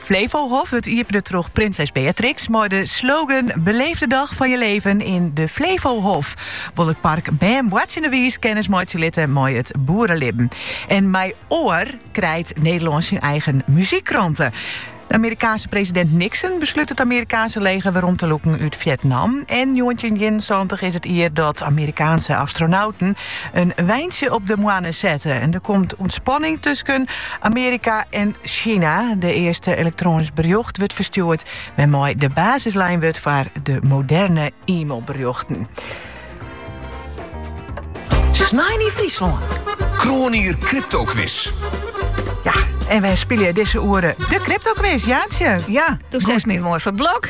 Flevohof, it iepene troch prinses Beatrix mei de slogan 'Beleef de dag van je leven in de Flevohof'. Wol it park bern boartsjinnewiis kennis meitsje litte mei it boerelibben. En mei Oor krijt Nederlân syn eigen muzykkrante. De Amerikaanse presidint Nixon beslút it Amerikaanse leger werom te lûken út Fjetnam. En njoggentjinienensantich is it jier dat Amerikaanse astronauten In weintsje op de moanne sette en der komt ûntspanning tusken Amerika en China. It earste elektroanysk berjocht wurdt ferstjoerd, wêrmei de basis lein wurdt foar de moderne e-mailberjochten. Snein yn Fryslân. Kroanier Cryptoquiz. Ja, en wy spylje dizze oere de Cryptoquiz, Jaantje. Ja, toen zegt mijn mooi van Blok.